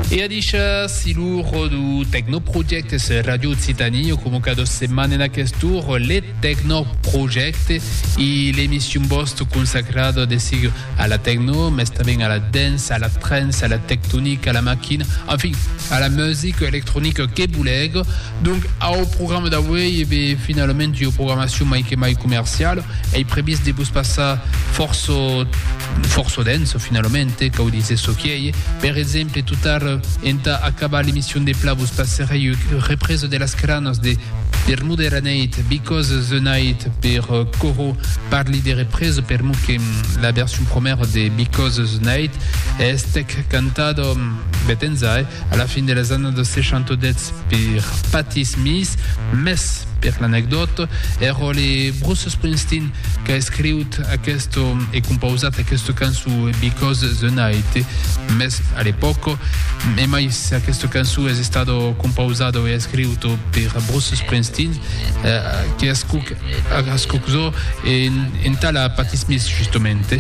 E a dicha, si lo ròdo Tecnoprojectes Radio Occitanie o convoca dos setman en aquest tour le Tecnoprojecte e l'emission bost consacrada de sig a la tecno, mes tanben a la dance, a la trance, a la tectonic, a la maquina, enfin, a la music electronica que boleg. Donc, au programa d'auei, e be, finalament ua programacion mai que mai comerciala. Ei previst de vos passar fòrça, fòrça dens, finalament, eh, cau díser çò qui ei. Per exemple, tot ara, entà acabar l'emission de pla, vos passerei ua represa de las cranas de Bermuda la neit, Because the Night, per Coro. Parli de represa per mot que la version promèra de Because the Night estèc cantada, bèt enza, eh, A la fin de las annadas 60 dètz per Patti Smith, mès per l'anecdòta, es ròtle Bruce Springsteen qu'a escriut aquesta e compausat aquesta cançó Because the Night, mès a l'epòca, e mai s'aquesta cançó es estada compausada e escriuta per Bruce Springsteen, que ascuc, ascuc zo, e entà la Patti Smith justament.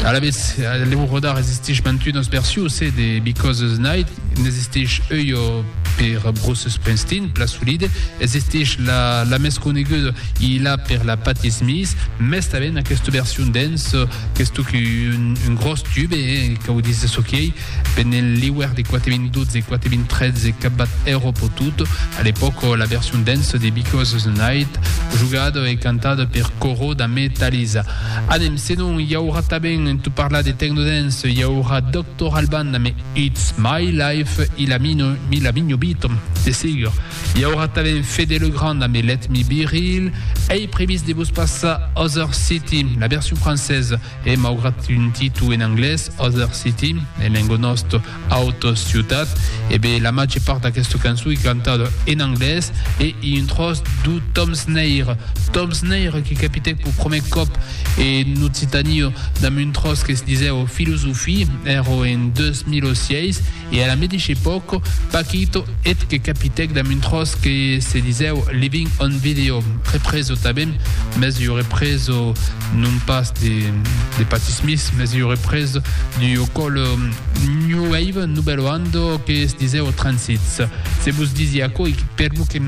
Alavetz, lèu rodar existish mantunos versius e The Because Night n'existich euio per Bruce Springsteen, plan solide, existish la la mès coneguda i la per la Patti Smith, mès tanben aquesta version dance, qu'es totun un gros tube, e qu'a udit de çò qui ei, Pendent l'iuèrn de 4012-4013 qu'a bat Erop o Tut, a l'epòca la version dance de Because the Night, jogada e cantada per Coro damb Talisa. Anem, senon i aurà tanben en tot parlar de techno dance, i aurà Doctor Alban damb It's My Life i la Migno Beat, de segur. I aurà tanben Fede Le Grand damb Let Me Be Real. Ei previst de vos passar Other City, la version française, E maugrat un titu en anglés, Other City, en lengo nòst, Auto Ciutat, e be la màger part d'aquesta cançon i cantada en anglés e i un tròç d'u Tom Sneir. Tom Sneir que capitèc p'u prumèr còp en Occitània damb un tròç que se disèu Filosofie, èra en 2006, E a la medici epòca, Paquito eth que capitèc damb un tròç que se disèu Living on Video, represo tanben, mès ua represo non pas de Patti Smith, mès ua represo d'ua còla New Wave, Nouvelle Oando, que se disèu Transits. Se vos disi aquò ei perque que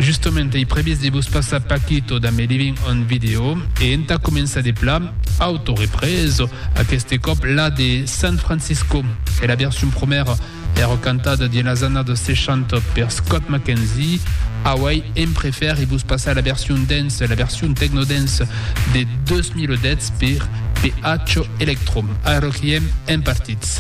justament ei previst de vos passar Paquito damb Living on Video e entà començar de plan, Auto represa, aqueste còp la de San Francisco, e la version promèra èra cantada dins las annadas 60 per Scott McKenzie. Auèi èm prefèr e vos passar la version dance, la version techno-dance de 2010 per PH Electro. Ara qu'i èm, èm partits.